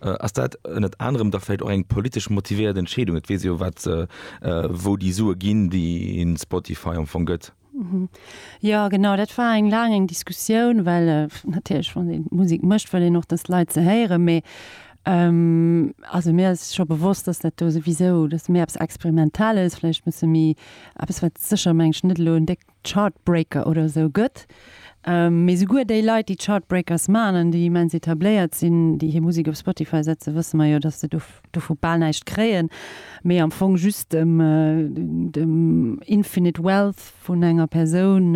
Ass dat ënnert anerem da vläicht och eng politesch motivéiert Entscheedung? Et weess jo wat, wou déi Sue ginn, déi een Spotify am Fong gëtt. Jo genau, dat war eng laang eng Diskussioun, well natierlech wann ee Musek mécht, wëll een och datt d'Leit se héieren. Mee also mir ass scho bewosst, datt dat do souwisou, datt méi eppes Experimentales, vläicht e bësse méi eppes wat sécher, meng ech, net elo en déck Chartbreaker oder esou gëtt. Mee souguer déi Leit, déi d'Chartbreakers maachen an déi immens etabléiert sinn, déi hir Musek op Spotify setzen, wësse mer jo, datt se dovu bal näischt kréien, mee am Fong just dem infinite wealth vun enger Persoun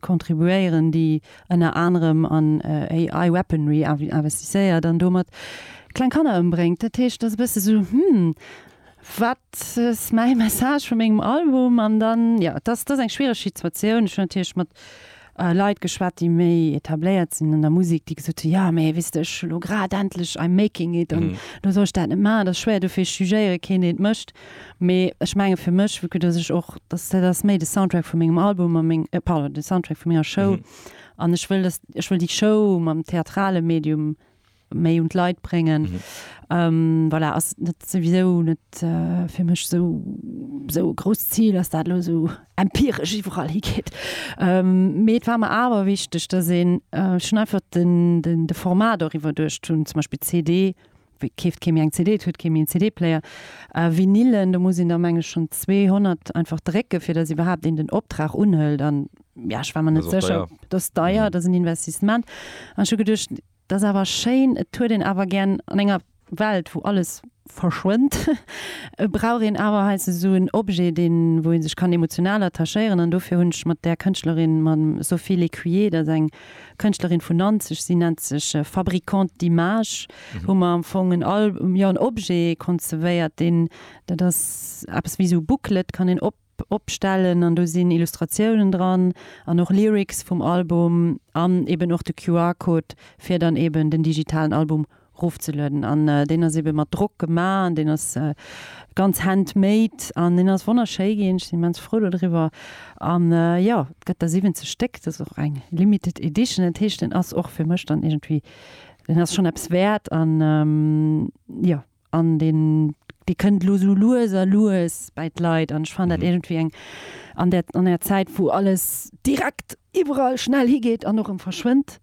contribuéieren, déi ënner anerem an AI weaponry investisséiert an domat kleng Kanner ëmbréngt. Dat heescht, et ass e bësse sou, Hm. Wat ass mäi Message vu mengem Album? An dann, jo, et ass eng schwiereg Situatioun. Ech hunn natierlech mat Leit geschwat, déi méi etabléiert sinn an der Musek, déi gesot hunn, jo, mee weess de, ech hu lo grad endlech I'm making it an elo soll ech dat net maachen, dat ass schwéier. Dofir, ech jugéiere keen, deen et mécht. Mee ech mengen, fir mech, vu que dass ech och, dass dat ass méi de Soundtrack vu mengem Album a meng, pardon, de Soundtrack vu menger Show. An ech wëll, dass, ech wëll déi Show mam theatrale Medium méi un d'Leit bréngen. Mhm. Ähm, voilà, ass net souwisou net äh, fir mech so so groß Ziel, ass dat lo so empiresch iwwerall higeet. Ähm, mee et war mer awer wichteg, dass een äh, schon einfach den, den, de Format oriwwer duerch tun, zum Beispiel CD, keeft kemi eng CD huet kemi en CD-Player äh, Vinilen da muss sinn der Menge schon 200 einfach drecke fir dat überhaupt in den Optrag unhëlt an ja, ich war man net secher deier. das deier mhm. das ein Investissement an schon gedcht Dat ass awer schéin. Et huet een awer gär an enger Welt, wou alles verschwënnt, brauch een awer heiansdo esou en Objet, deen, wou ee sech kann emotional attachéieren. An dofir hunn ech mat där Kënschtlerin, mam Sophie Lécuyer, dat ass eng Kënschtlerin vun Nanzeg, si nennt sech Fabricante d'Images, hu mer am Fong en Al, jo en Objet konzepéiert, deen, dat ass eppes wéi esou e Booklet, kann een op, opstellen an do sinn Illustratiounen dran an och Lyrics vum Album an eben och de QR-Code fir dann eben den digitalen Album rofzelueden an deen ass eben mat Drock gema an deen ass ganz handmade an deen ass wonnerschéi ginn. Ech sinn immens frou do driwwer an jo et gëtt der 70 Stéck. Dat ass och eng limited edition, dat heescht deen ass och fir mech dann iergendwéi, deen ass schonn eppes wäert an jo an den Dee kënnt elo esou lues a lues bäi d'Leit an ech fannen dat iergendwéi eng an där an enger Zäit, wou alles direkt iwwerall schnell higeet an och erëm verschwënnt,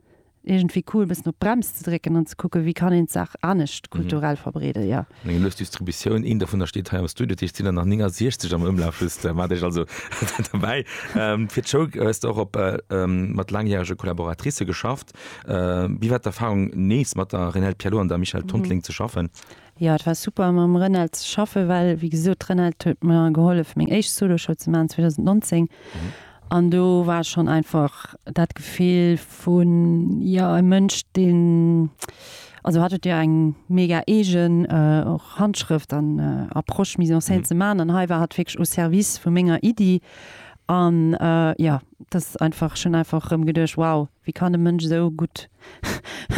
iergendwéi cool e bëssen op d'Brems ze drécken an ze kucken, wéi kann een d'Saach anescht kulturell verbreeden, jo. Meng lues Distributioun, een dovunner steet hei am Studio, dat heescht, et sinn der nach 69 am Ëmlaf, just wat ech also dobäi. Fir d'Show hues de och op mat laangjärege Collaboratricë geschafft. Wéi war d'Erfahrung nees mat der Renelde Pierlot an der Michèle Tontleng ze schaffen? Jo, et war super mam Renelde ze schaffen, well wéi gesot d'Renelde huet mer gehollef meng éischt Soloshow ze maachen 2019 an do war schonn einfach dat Gefill vun jo e Mënsch deen, also hat huet jo eng mega eegen och Handschrëft an Approche mise en scène ze maachen an hei war hat wierklech au service vu menger Iddi an jo. Dass einfach, ech hunn einfach erëm geduecht, wow, wéi kann e Mënsch esou gutt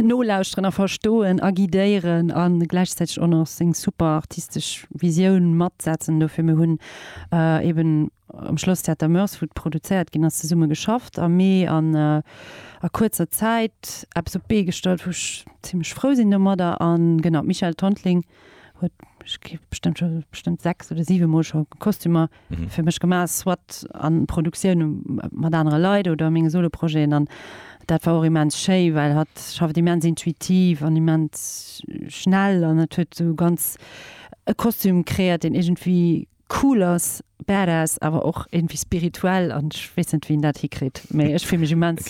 nolauschteren a verstoen a guidéieren a gläichzäiteg och nach seng super artistesch Visioun matsetzen dofir. Mir hunn eeben am Schlosstheater Moers, wou et produzéiert ginn ass, zesumme geschafft a mee an a kuerzer Zäit eppes op d'Bee gestallt, wou ech zimmlech frou sinn domadder. A genau, d'Michèle Tontling huet, ech géif bestëmmt scho, bestëmmt sechs oder siwe mol scho Kostümer fir mech gemaach, soit an Produktioun mat anere Leit oder menge Soloprojeten. An dat war och immens schéi, well hatt schafft immens intuitiv an immens schnell an et huet esou ganz e Kostüm kreéiert, deen iergendwéi cool ass, badass, awer och iergendwéi spirituell. An ech weess net, wéi en dat hikritt, mee ech fillen mech immens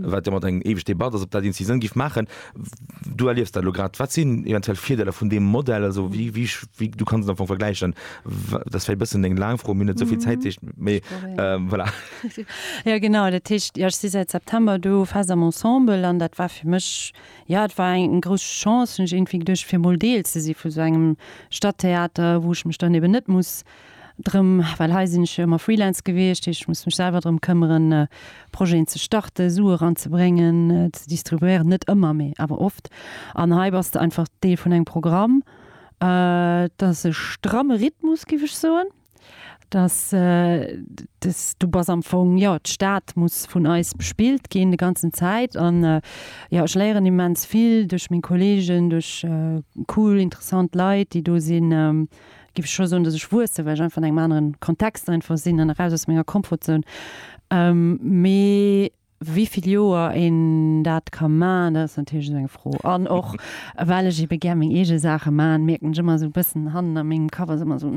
wat jo mat eng éiweg Debatt ass, ob dat een si Sënn géif maachen. Du erliefs dat elo grad. Wat sinn eventuell Virdeeler vun deem Modell? Also wéi, wéi, wéi, du kanns et am Fong vergläichen. Dat ass vläicht e bëssen eng laang Fro, mir hunn net esou vill Zäit, deecht, mee voilà. Jo genau, dat heescht, jo ech si säit September do fest am Ensemble an dat war fir mech, jo et war eng grouss Chance hunn ech iergendwéi geduecht, fir emol Deel ze si vu sou engem Stadttheater, wou ech mech dann eben net muss, Drëm, well hei sinn ech jo ëmmer Freelance gewiescht, heescht ech muss mech selwer drëm këmmeren Projeten ze starten, Sue eranzebréngen, ze distribuéieren, net ëmmer, mee awer oft. An hei bass de einfach Deel vun engem Programm. Et ass e stramme Rhythmus, géif ech soen. Et ass, du bass am Fong, jo, d'Stad muss vun eis bespillt ginn de ganzen Zäit. An jo, ech léieren immens vill duerch meng Kolleegen, duerch cool, interessant Leit, déi do sinn. géif ech scho soen, dass ech wuessen, well ech einfach an engem aneren Kontext einfach sinn an eraus aus menger Comfortzone. Mee wéi vill Joer een dat ka maachen, dat ass natierlech esou eng Fro. An och well ech ebe gär meng eege Saache maachen, mierken ech ëmmer esou e bëssen hannen a mengem Kapp ass ëmmer esou,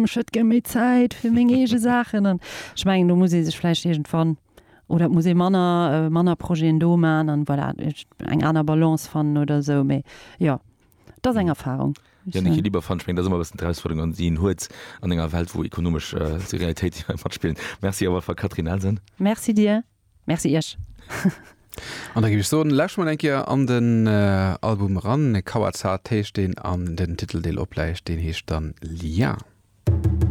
Ech hätt gär méi Zäit fir meng eege Saachen. An ech mengen, do muss ee sech vläicht iergendwann, oder et muss ee manner, manner Projeten do maachen an, voilà, eng aner Balance fannen oder esou. Mee jo, et ass eng Erfarung. Janicke Lieberfant, ech mengen, dat ass ëmmer e bëssen d'Erausfuerderung an déi een huet an enger Welt, wou ekonomesch Realitéite matspillen. Merci op alle Fall, Catherine Elsen. Merci dir. Merci iech. An da géif ech soen, lauschte mol eng Kéier an den Album eran. Kawatsat heescht deen an den Titeldeel opläicht, deen heescht dann Lien.